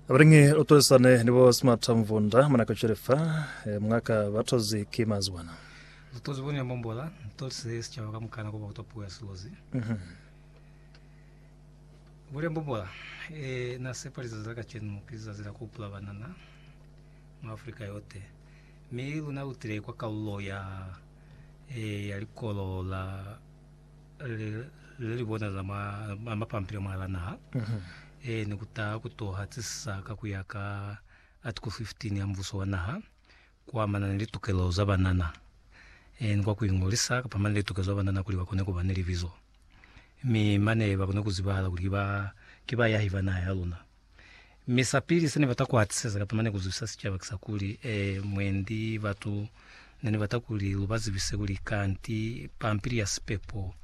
Abalingi utwezisane ni bo Smart Mvunda mwana kuchelefa eh, mwaka batozi ki mazwana. Zitozi bone mbombola tolise sicaba ka mukana kuba kutwa puo ya silozi. Bule mbombola e na sepa lizazi la kacenu ki lizazi la kupula banana mu Afrika yote. Mi luna lutile kwa kalulo ya e ya likolo la le li bona za mapampila mwa la naha e ni kuta ku toha tisisa ka ku ya ka Article 15 ya Mbuso wa Naha ku amana ni litukelo za banana e ni kwa ku ingolisa kapa mane litukelo za banana kuli ba kone ku ba ni libizo mi mane ba kone ku zibahala kuli ki bayahi ba naha ya luna. Mi sapili se nibata kuhatiseza kapa mane kuzwisa sicaba kisakuli, eh, mwendi batu nenibata kuli lubazibise kuli kanti pampili ya sipepo,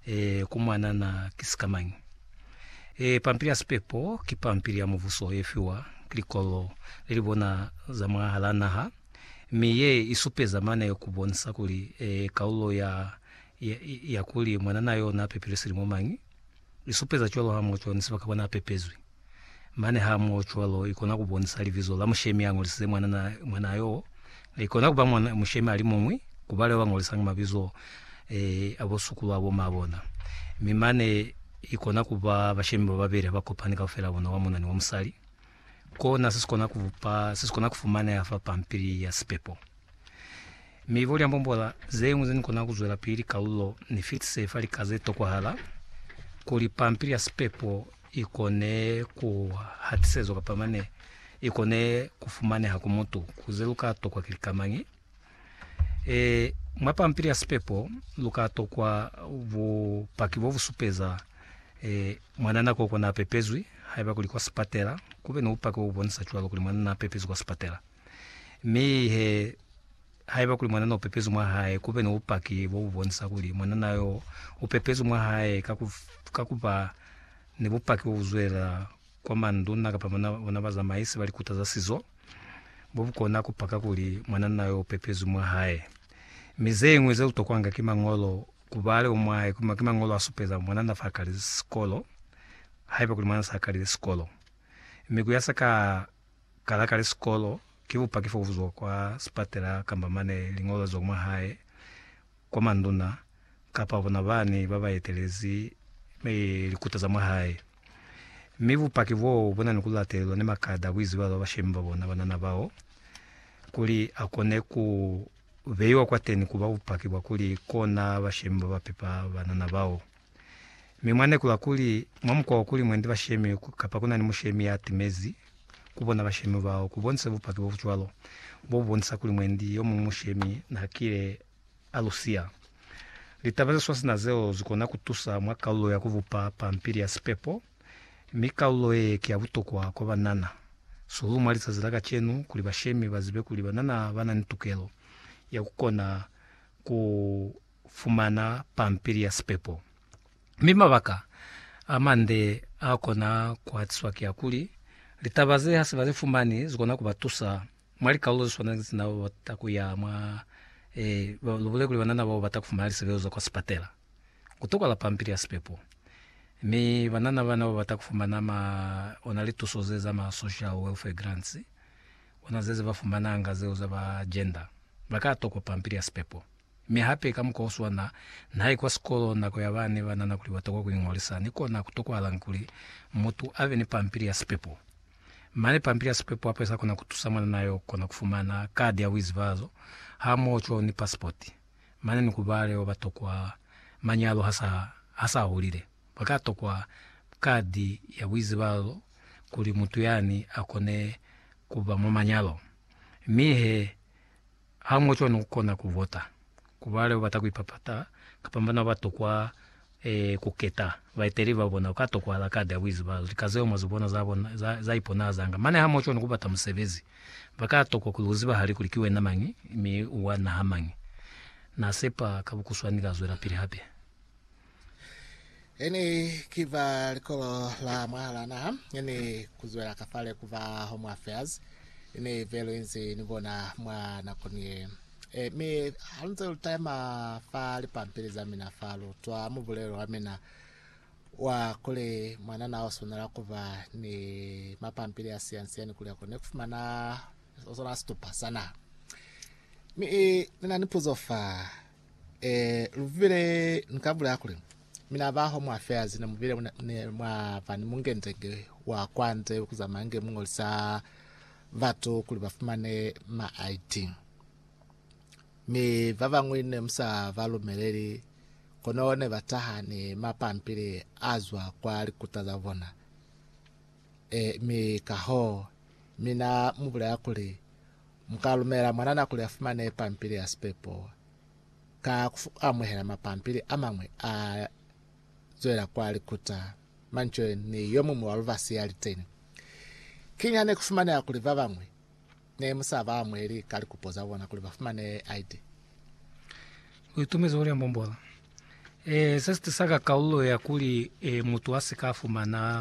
eh, ku mwanana ki sikamañi. Eh, pampili ya sipepo ki pampili ya Mubuso yefiwa ki likolo lelibona za mwahala naha, mi ye isupeza mane kubonisa kuli, eh, kalulo ya, ya, ya kuli mwanana yo napepilwe silimo mañi. Li supeza cwalo ha muocwa ni sibaka bona a pepezwi. Mane ha muo cwalo, i kona ku bonisa libizo la mushemi a ngolisize mwanana, mwanaa y'o. I kona ku ba mwana, mushemi a li muñwi, ku ba leo ba ngolisangi mabizo a bo sukulu a bo maa bona. Mi mane i kona ku ba bashemi ba babeli ha ba kopani kaufela bona, wa muna ni wa musali. kona se si kona ku bupa se si kona ku fumaneha fa pampili ya sipepo. Mi bo liambombola ze ñwi ze ni kona ku zwela pili kalulo ni fitise fa lika ze tokwahala kuli pampili ya sipepo i kone ku hatisezwa kapa mane i kone ku fumaneha ku mutu ku ze lu ka tokwa ki lika mañi. E, mwa pampili ya sipepo lu ka tokwa bupaki bo bu supeza e, mwanana koko na pepezwi, haiba kuli kwa sipatela, ku be ni bupaki bo bu bonisa cwalo kuli mwanana a pepezwi kwa sipatela. Mi he, haiba kuli mwanana u pepezwi mwa hae, ku be ni bupaki bo bu bonisa kuli mwanana yo u pepezwi mwa hae ka ku, ka ku ba ni bupaki bo bu zwelela kwa manduna kapa bona bazamaisi ba likuta za sizo, bo bu kona ku paka kuli mwananna yo u pepezwi mwa hae. Mi ze ñwi ze lutokwanga ki mañolo, ku ba leo mwa hae, ki mañolo a supeza mwananna fa kalizi sikolo, haiba kuli mwananna sa kalile sikolo. Mi ku ya sa ka kala kali sikolo, ki bupaki fo bu zwa kwa sipatela kamba mane liñolo le zwa mwa hae. kwa manduna kapa bona bani ba ba etelezi likuta za mwa hae. Mi bupaki boo bu na ni ku latelelwa ni makada a ku iziba ba bashemi ba bona banana bao, kuli a kone ku beiwa kwateni ku ba bupaki bwa kuli kona bashemi ba ba pepa banana bao. Mi mwa nekola kuli, mwa mukwa wo kuli mwendi bashemi kapa kuna ni mushemi ya timezi ku bona bashemi bao, ku bonisa bupaki bo bu cwalo, bo bu bonisa kuli mwendi yo muñwi mushemi na kile a lu siya. Litaba ze swasina zeo zi kona ku tusa mwa kalulo ya ku bupa pampili ya sipepo, mi kalulo ye ki ya butokwa kwa banana sihulu mwa lizazi la kacenu kuli bashemi ba zibe kuli banana ba na ni tukelo ya ku kona ku fumana pampili ya sipepo. Mi mabaka amande aakona kuhatiswa kiakuli, litaba ze hasi bazi fumani zikona kubatusa mwa likalulo zeswana ni zena babata kuya mwa ee, lubule kuli banana bao bata kufumana lisebelezo za kwa sipatela. Kutokala pampili ya sipepo. Mi banana bana babata kufumana ma, ona lituso ze za ma social welfare grants, ona zeze bafumananga zeo za ba gender, baka tokwa pampili ya sipepo. Mi hape ka mukwa oswana, naye kwa sikolo nako ya bane banana kuli batokwa kuingolisa, ni kona kutokwahalanga kuli mutu abe ni pampili ya sipepo. Mane pampili ya sipepo hape sa kona kutusa mwanana yo kona kufumana kadi ya buizibazo hamoho cwalo ni pasipoti. Mane ni ku bale baba tokwa manyalo hasa hasa hulile, baka tokwa kadi ya buizibazo kuli mutu yani akone kuba mwa manyalo. Mi he, Ha mu cwani ku kona ku vota ku ba leo bata ku ipapata kapa bana ba tokwa ku keta baeteleli ba bona? Ku ka tokwahala kadi ha ku izibahala lika zeo mwa zibona za bona za iponahazanga. Mane ha mu cwani ku bata musebezi, ba ka tokwa kuli u zibahale kuli ki wena mañi mi u wa naha mañi. Na sepa ka bukuswani ka zwelapili hape. Ini ki ba likolo la mwahala naha, ini kuzwela kafale ku ba Home Affairs, ini velu inzi ni bona mwa nakoni ye. E, mi halunze lu taima fa lipampili za mina fa lu twa mubulelo wa mina wa kuli mwanana o swanela ku ba ni mapampili a siyansiyani kuli akone ku fumana sona situpa sa naha. Mi e, ni na ni puzo fa. Ee, lu bile ni ka bulaya kuli, Mina baho mwa feazi ne mu bile muna- ne mwa ba ni mungendenge wa kwa nze ku zamaya nge mu ngolisa batu kuli ba fumane ma ID. Mi ba bañwi ne mu sa ba lumeleli, kono ne ba taha ni mapampili a zwa kwa likuta za bona. Ee, mi kahoo, mina mu bulaya kuli, Mu ka lumela mwanana kuli a fumane pampili ya sipepo ka ku amuhela mapampili a mañwi a zwela kwa likuta. Manje, ni yo muñwi wa lubasi ya li teñi. Kiñi ha ne ku fumaneha kuli ba bañwi ne mu sa ba amuheli ka likupo za bona kuli ba fumane ID? U itumezi kuli a mbombola. Ee, se si tisa ka kalulo ya kuli ee mutu a si ka fumana